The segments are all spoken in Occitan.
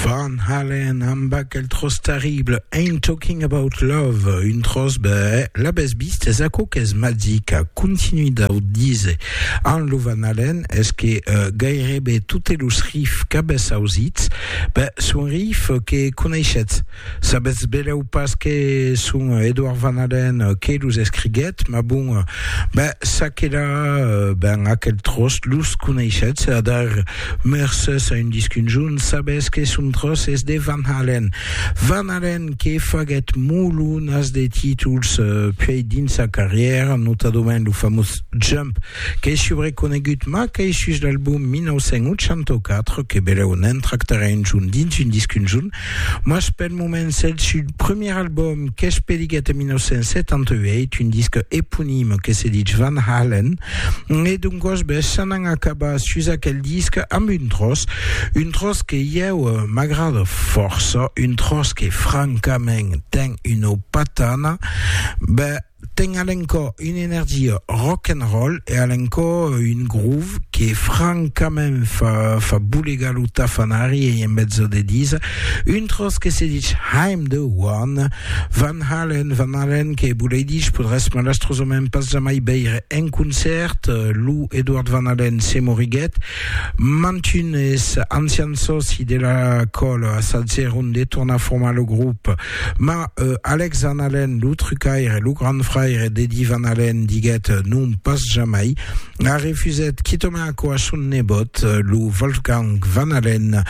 Van Halen amb aquel tròç terrible Ain't Talking About Love, un tròç bèh, l'abès vist, es aquò qu'es magica, continui dau díser amb lo Van Halen, es que gairebe totes los riffs qu'abès ausits, bèh, son riffs que coneishetz. Sabetz benèu pas que son Edouard Van Halen que los escriguèt, mas bon, ben, ça que la, ben, aquel tròç los coneishetz, adar, mercés a un disc un jorn, sabetz que son tròç es de Van Halen. Van Halen que faguèt molonas de títols puèi dins sa carrièra, notadament lo famós Jump, qu'es subreconegut, mas qu'ei sus l'album 1984 que benèu ne'n tractarè un jorn dins un disc un jorn, Mas pel moment s'el sud premier album qu'es peliguet en 1978, un disque eponime que se ditz Van Halen, e d'un gosbes s'anan acabar sus aquel disque amb un tròç, un tròç que ieu m'agrada fòrça, un tròç que francament ten una patana, ben, Ten a l'encò una energia rock and roll e a l'encò un groove que francament fa fa bolegar lo tafanari ei en mezzo de disa un tròç que se dich I'm the one Van Halen Van Halen que volei dich podràs malastrosament pas jamai veire en concèrt lo Edward Van Halen se moriguèt mantun es ancians sòci de la còl assatgèron de tornar formar lo grop Mas Alex Van Halen, lo trucaire, lo grand fraire d'Eddie Van Halen, diguèt non pas jamai, a refusèt quitament aquò a son nebòt, lo Wolfgang Van Halen,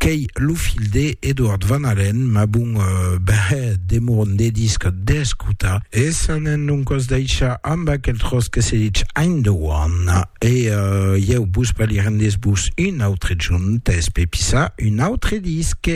qu'ei lo filh de Edward Van Halen, mas bon, ben, demoron de disc d'escotar. E s'anèn doncòs daishar amb aquel tròç que se ditz Ein Doan, e ieu vos balirèn desbús un autre junt, es pepissar un autre disc.